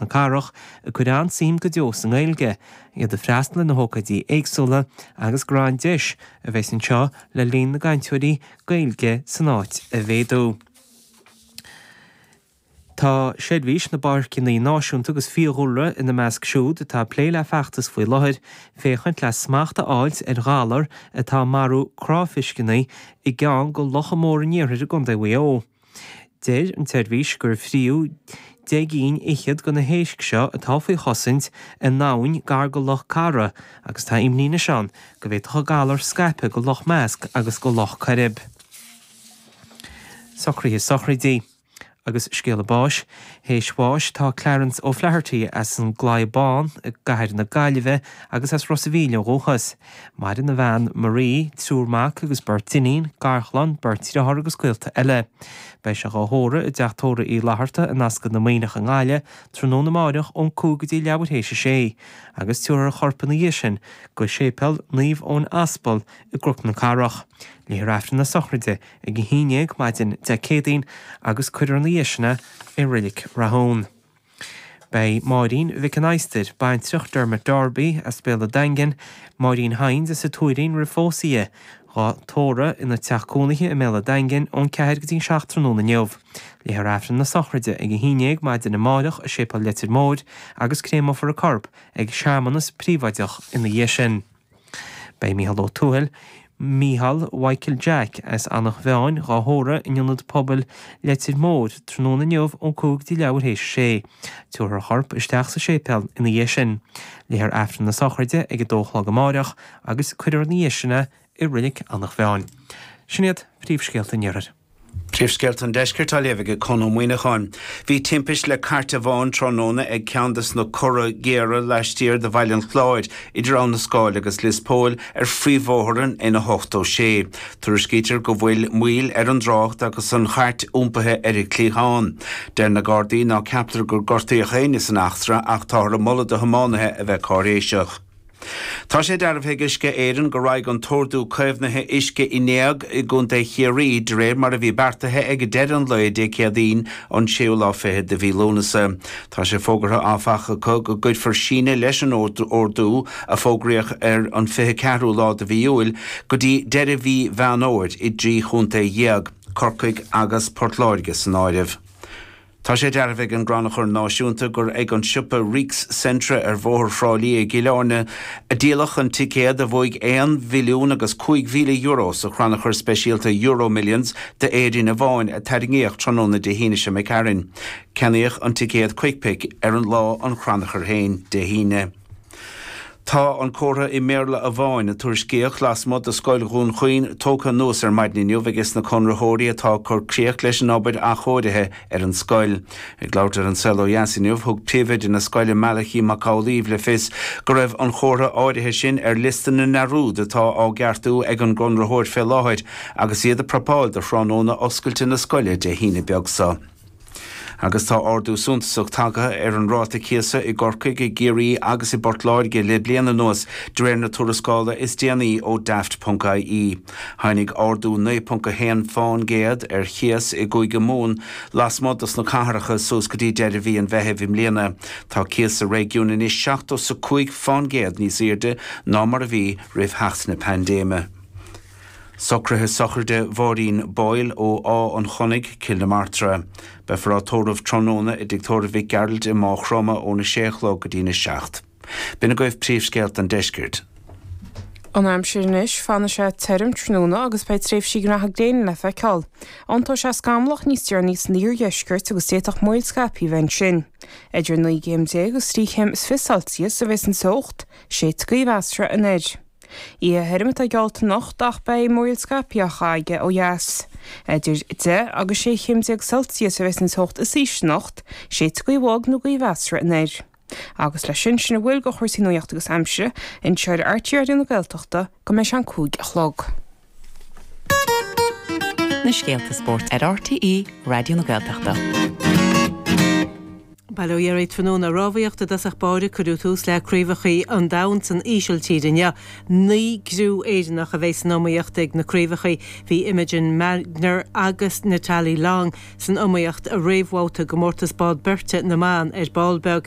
na cathrach, ag cur an-suim go deo sa nGaeilge, iad ag freastal ar na hócáidí éagsúla agus gur an-deis a bheidh anseo le líon na gcainteoirí Gaeilge san áit a mhéadú. Tá Seirbhís na bPáirceanna Náisiúnta agus Fiadhúlra ina measc siúd atá ag plé le feachtas faoi láthair féachaint le smacht a fháilt ar ghalar atá ag marú cráifisceanna i gceann de locha móra an iarthair i gContae Mhaigh Eo. Deir an tSeirbhís gur fríú deich gcinn fhichead de na héisc seo atá faoi chosaint i n-abhainn gar go Loch Ceara agus tá imní anois ann go bhféadfadh an galar scaipeadh go Loch Measc agus go Loch Coirib. Socruithe Sochraidí agus scéala báis Théis bháis dhó tá Clarence O'Flaherty as an gClaí Bán i gCathair na Gaillimhe agus as Ros a' Mhíl ó dhúchas. Maireann a bhean Marie, triúr mac agus beirt iníon, garchlann, beirt dhriotháir agus gaolta eile. Beidh sé dhá thórramh i dTeach Tórraimh Uí Fhlaithearta i Ascaill na Muimhneach i nGaillimh, tráthnóna amáireach ón 5 go dtí leathuair théis a sé, agus tabharfar a chorp ina dhiaidh sin go Séipéal Naomh Eoin Aspal i gCnoc na Cathrach. Léifear Aifreann na Sochraide ag a haon déag maidin Dé Céadaoin agus cuirfear ina dhiaidh sin é i Reilig Rathúin. Beidh Máirín Mhic an Iomaire, baintreach Dermot Darby, as Béal a' Daingin, Máirín Hynes as a Tuairín roimh phósadh di, dhá tórramh ina teach cónaithe i mBéal a' Daingin ón 4 go dtí an 7 tráthnóna inniu, léifear Aifreann na sochraide ag a haon déag maidin amáireach i Séipéal Leitir Móir agus créamfar a corp ag searmanas príobháideach ina dhiaidh sin. Beidh Mícheál Ó Tuathail, Mícheál Mhichael Jack, as Eanach Mheáin dhá thórramh in Ionad Pobail Leitir Móir tráthnóna inniu ón cúig go dtí leathuair théis a sé. Tabharfar a chorp isteach sa séipéal ina dhiaidh sin. Léifear Aifreann na Sochraide ag a dó a chlog amáireach agus cuirfear ina dhiaidh sin é i Reilig Eanach Mheáin. Sin iad príomhscéalta an iarthair. Príomhscéalta an Deiscirt á léamh ag Conn Ó Muíneacháin. Bhí timpist le cairt amháin tráthnóna ag ceann de sna corra géara laistiar de Bhaile an Chláir, idir Abha na Scáil agus Lios Póil ar phríomhbhóthar an N86. Tuairiscítear go bhfuil moill ar an dtrácht agus an chairt iompaithe ar a cliathán. Deir na Gardaí ná ceaptar gur gortaíodh éinne san eachtra ach táthar ag moladh do thiománaithe a bheith cáiréiseach. Tá sé dearbhaithe ag Uisce Éireann go raghaidh an t-ordú caomhnaithe uisce in éag i gContae Chiarraí de réir mar a bhí beartaithe ag deireadh an lae Dé Céadaoin an séú lá fichead de mhí Lúnasa. Tá sé fógartha, áfach, acu go gcuirfear síneadh leis an ordú, a fógraíodh ar an fiche ceathrú lá de mhí Iúil, go dtí deireadh mhí Mheán Fhómhair i dtrí chontae dhéag, Corcaigh agus Port Láirge san áireamh. Tá sé dearbhaithe ag an gCrannchur Náisiúnta gur ag an siopa Reeks Centra ar Bhóthar Thrá Lí i gCill Áirne a díoladh an ticéad a bhuaigh aon mhilliún agus cúig mhíle euro sa chrannchur speisialta EuroMillions d'Éirinn amháin a tarraingíodh tráthnóna Dé hAoine seo imigh tharainn. Ceannaíodh an ticéad 'Quick-Pick' ar an lá an chrannchuir féin, Dé hAoine. Tá an comhartha i mBéarla amháin a tuairiscíodh lasmuigh de Scoil Dhún Chaoin tógtha anuas ar maidin inniu aige sna conraitheoirí atá ag cur críoch leis an obair athchóirithe ar an scoil. Ag labhairt ar An Saol Ó Dheas inniu, thug Príomhoide na scoile Malachy Mac Amhlaoibh le fios go raibh an chomhartha áirithe sin ar liosta na ndearúd atá á gceartú ag an gconraitheoir fé láthair agus iad ag prapáil do thráthnóna oscailte na scoile Dé hAoine beag seo. Agus tá ardú suntasach tagtha ar an ráta cíosa i gCorcaigh, i gCiarraí agus i bPort Láirge le bliain anuas, de réir na tuarascála is déanaí ó Daft.ie. Tháinig ardú 9.1 fán gcéad ar chíos i gCúige Mumhan lasmuigh dos na cathracha suas go dtí deireadh mhí an Mheithimh i mbliana. Tá cíos sa réigiún anois seachtó 's a cúig fán gcéad níos aoirde ná mar a bhí roimh theacht na paindéime. Socruithe sochraide Mháirín Boyle ó Áth an Chonnaigh, Cill na Martra. Beifear á tórramh tráthnóna i dtigh tórraimh Mhic Gearailt i Máigh Chromtha óna sé a chlog go dtína seacht. B'in agaibh príomhscéalta an deiscirt. An aimsir anois, fanfaidh sé tirim tráthnóna agus beidh tréimhsí maithe gréine le feiceáil. Iontóidh sé scamallach níos deireanaí san iardheisceart agus d'fhéadfadh múraíl scaipthe a bheith ansin. Idir naoi gcéim déag agus trí chéim is fiche Celsius a bheas an teocht, séidfidh gaoth mheasartha anoir. Oíche thirim atá geallta anocht ach beidh múraíl scaipthe aige ó dheas. Idir 10 agus 16 chéim Celsius a bheas an teocht is ísle anocht, séidfidh gaoth bhog nó gaoth mheasartha anoir. Agus leis sin, sin a bhfuil de chúrsaí nuaíochta agus aimsire anseo ar RTÉ Raidió na Gaeltachta go mbeidh sé an cúig a chlog. Na scéalta spóirt ar RTÉ Raidió na Gaeltachta. Bail ó Dhia oraibh tráthnóna rámhaíocht i dtosach báire cuireadh tús le craobhachaí an domhain san Ísiltír inniu. Naoi gcriú Éireannach a bheidh san iomaíocht ag na craobhachaí. Bhí Imogen Magner agus Natalie Long san iomaíocht i réamhbhabhta i gcomórtas bád beirte na mban ar ball beag.